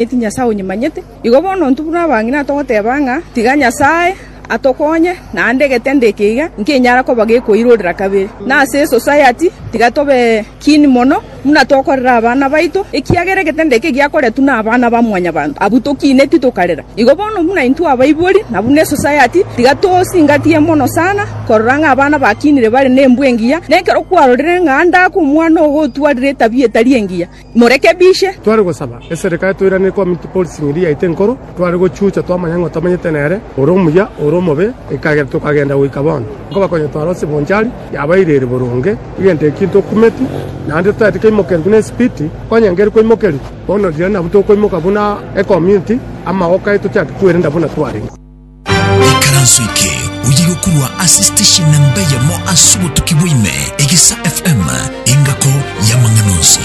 Eti Nyasae onyimanyete? Igo bono intwe buna abang'ina togoteba ng'a tiga Nyasae atokonye, naende egetende eke iga nkenyara koba gekoirorera kabere. Na ase esosayati tiga tobe kiini mono buna tokorera abana baito, ekiagera egetende eke giakoretwe nabana ba mwanyabanto, abwo tokineti tokarera. Igo bono buna intwe abaibori na buna esosayati, tiga tosingatie mono sana korora ng'a abana bakinire bare nembwe engiya, nekero kwarorire ng'a Andake omwana ogo otwarire etabia etari engiya. morekebishe. Tware gosaba eserekare toirane ekomiti policing eria yaito enkoro, tware gochucha twamanya ng'a tamenyete nere, ore omuya, ore omobe, ekagera tokagenda goika bono. Nkobakonya twarose Bonchari, yabairire boronge, egento ekio ntokumeti, naende totaeti koimokerwa buna esipiti, onye ngeri koimokerwa, bono riria nabwo tokoimoka buna ekomiti, amagoka aye tochake kwerenda buna twarenge. Ekaranso eke oye gokorwa ase station na mbeyemo ase obotuki bwaime egesa FM engako yamang'ana onsi.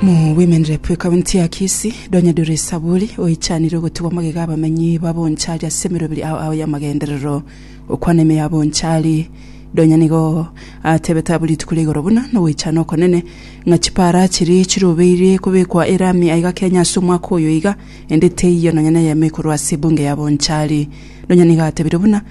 Mu Women Rep ekaunti ya Kisii, Donya Dore Saburi oichanire ogotugwa magega abamenyi ba Bonchari ase emeroberi ao ao y'amagenderero. Okwana ime ya Bonchari, Donya nigo atebete abwo rituko ria igoro buna nogoichana okonene ng'a chipara chiria chirobeirie kobekwa erami aiga Kenya ase omwaka oyo iga Ende teiyo nonya neyemo ekorwa ase ebunge ya Bonchari. Nonya nigo atebire buna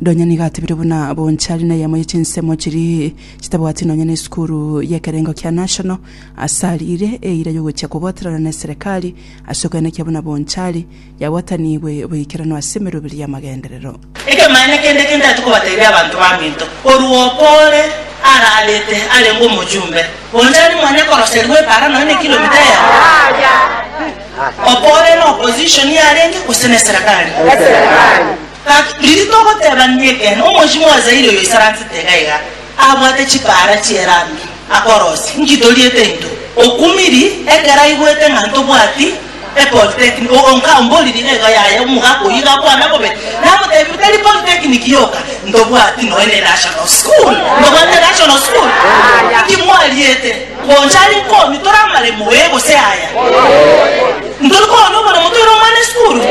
Nonya nigo atebire buna Bonchari neyemo ye chinsemo chiri chitabwati nonya ne esukuru y'ekerengo kia National ase ariire eira y'ogochia kobwaterana ne eserekari ase okwenekia buna Bonchari Yagwatanigwe boikeranu ase emeroberi y'amagenderero. Ekemanyererio kende eke ntari kobateebia abanto baminto, korwa opo ore ararete arenge omochumbe, onchani mwane koroserigwa epaara nonya ne kilomita eyemo, opo ore na opposition yarenge, gose ne eserekari. Gaki, riria togoteebania ekeene, omochie bwa Zaire oyo oisaransete iga iga, abwate chipaara chi'erambi, akorosie, Inki toriete into? Okumiri ekero aigwete ng'a ntobwati epolitekiniki, ogonka omboririe iga iga, Yaya, omogaka oyio iga akwana bobe, namoteebire, Tari politekniki yoka, ntobwati nonya nenational school, ntobwati nenational school. Inki mwariete? Gocha aria nkoonia tore amaremo, Ee gose Aya. Ntori koonia oboremo toire omwana esukuru?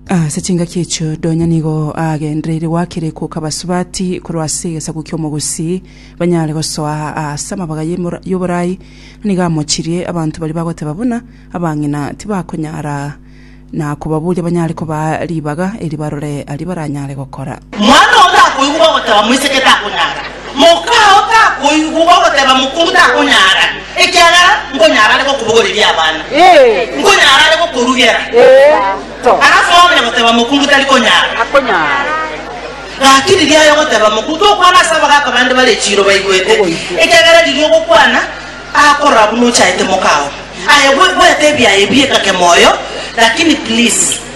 Ase chingaki echio Donya nigo aagendereire goakerekwa okabasubati korwa ase egesaku ki'omogusi, banyare gosoa aase amabaga y'emora- y'oborai, na nigo amochirie abanto baria bagoteba buna abang'ina tibakonyara na kobaboria banyare kobaa ribaga eri barore aria baranyare gokora. Mwana oyo takoigwa bagoteba moiseke takonyara, Moka ao takoigwa ogoteba mokong'u takonyara, ekiagera nkonyara are gokobogoreria abana, nkonyara are gokorugera. Alafu aonya goteba mokong'u tari konyara. Gaki riria aye ogoteba mokong'u tokwana ase abagaaka bande bare chiiro baigwete, ekiagera riria ogokwana akorora buna ochaete moka ao. Aye gwe gweta ebiaye biekake moyo, lakini please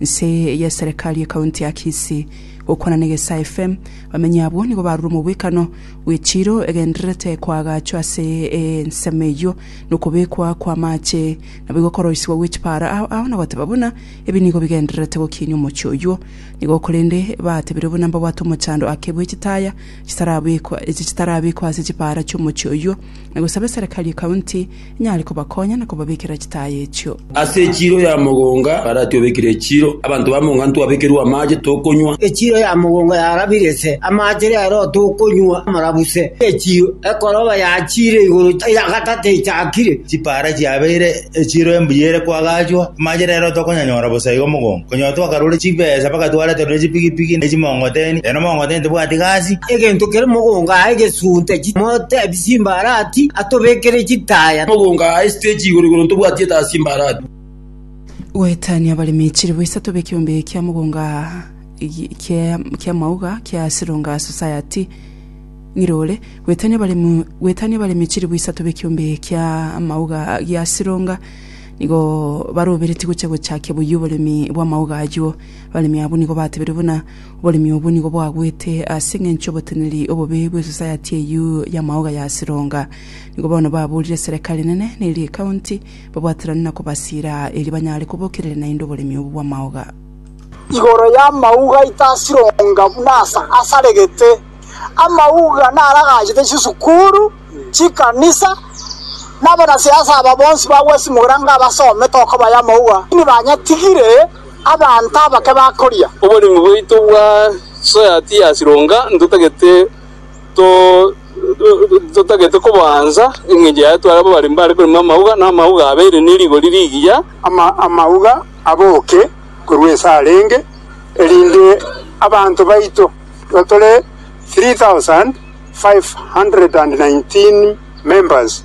Nse y'eserekari ye kaunti ya Kisii. Gokwana n'Egesaa FM, abamenyi abwo nigo barure omobwekano bw'echiiro egendererete koagachwa ase ensemo eyio nokobekwa kw'amaache naboigo okoroisigwa gw'echipaara ao ao nagoteba buna ebi nigo bigendererete gokiinia omochie oyio nigo korende batebire buna mbabwate omochando ake bw'echitaya chitarabekwa echi chitarabekwa ase chipaara chi'omochie oyio nagosaba eserekari ye kaunti Nyare kobakonya na kobabekera chitaya echio. Ase echiiro ya mogonga Farati obekire echiiro, abanto ba monga ntwabekerwe amaache tokonywa. Echiiro ya mogonga yarabire ise amaache rero tokonywa amarabuse. Echiiro ekoroba yachiire igoro ya gatato echakire. Chipara chiabeire echiiro embuya ere kwagachwa amaache rero tokonyanyora bosa igo mogonga. Konyora twakarure chibesa mpaka twareterure chipigipigi ne chimongoteni, rero mongoteni tebwati gasi. Egento kere mogonga aye gesunte chimote. Chimbarati atobekere chitaya. Mogonga aa esiteji igoro igoro ntobwati etaa chimbarati. Goetania abaremi chilibu isato b'ekiombe kia mogonga aa kia mauga kia Silonga Society ng'ire ore. Goetania abaremi Goetania abaremi chilibu isato b'ekiombe kia mauga gia Silonga nigo baroberetie gochia gochakia boyio oboremi bw'amauga ayio. Abaremi abwo nigo batebirie buna. Oboremi obwo nigo bwagwete ase engencho y'oboteneneri obobe bwe society eyio ya maoga ya Sironga. Nigo bono baburire serekari enene ne eria ecounty babwaterane na kobasira erio banyare kobokerere naende oboremi obwo bw'amaoga. Igoro y'amauga aito a Sironga buna ase asaregete, amauga naragachete chisukuru, chikanisa, na abanasiasa aba bonsi bagwesimugera ng'a basomete okobayo amauga, lakini banyatigire. Abanto abake bakoria. Oboremu bwaito bwa soya tiyasironga, ntotagete koboansa, engencho yaye twaraba bare mbare korema amauga, na amauga abeire ne rigori rigiya, amauga aboke korwa ase arenge, erinde abanto baito tore 3,519 members.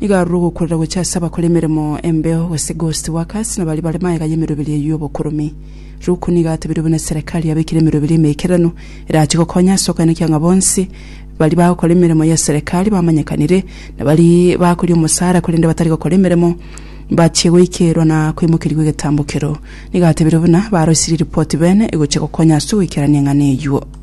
Nigo arure ogokurera gochia ase abakora emeremo embeo, gose ghost workers, na baria bare magega y'emeroberi eyio y'obokoromi. Luku nigo atebirie buna eserekari yabekire emeroberi emeikeranu erachie gokonya ase okoenekia ng'a bonsi baria bagokora emeremo y'eserekari bamanyekanire na baria bakoria omosaara korende batari gokora emeremo mbachie goikerwa na koimokerigwa egetambo keroo. Nigo atebirie buna barosirie ripoti bene egochia gokonya ase ogoikerania eng'ana eyio.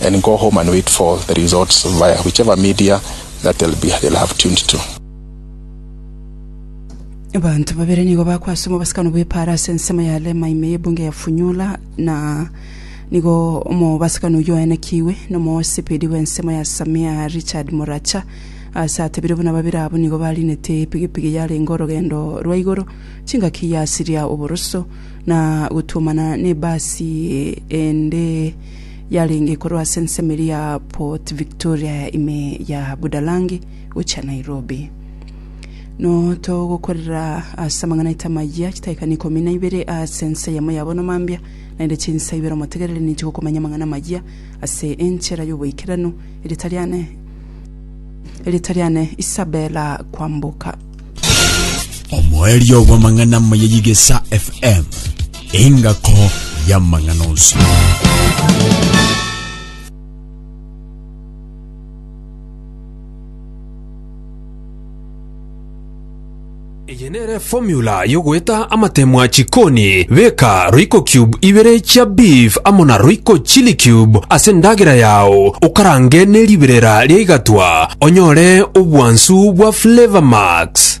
and go home and wait for the results via whichever media that they'll be they'll have tuned to. Abanto babere nigo bakwa ase omobasakano bw'epaara ase ensemo ya Lema ime y'ebunge ya Funyula, na nigo omobasakano oyio oenekigwe nomosibiri bw'ensemo ya Samia Richard Moracha ase atebirie buna babere abwo nigo barinete epigipigi yarenge orogendo rwa igoro chingaki yasiria oboroso na gotuomana n'ebasi ende yarenge korwa ase ensemo eria ya Port Victoria ime ya Budalangi gochia Nairobi. Notogokorera ase amang'ana aito amayia chitaikani ikomi na ibere ase ense eyemo ya bono mambia, naende chinsa ibere omotegereri ninche gokomanya amang'ana amayia ase enchera y'oboikeranu, eritariane Isabella Kwamboka. omoerio bw'amang'ana amaya y'Igesa FM, engako y'amang'ana onsi. Eye nere formula Ayio goeta amatemo a chikoni, beka royco cube ibere chia beef amo na royco chili cube ase endagera yao, okarange ne riberera ria igatwa, onyore obwansu bwa Flavour Max.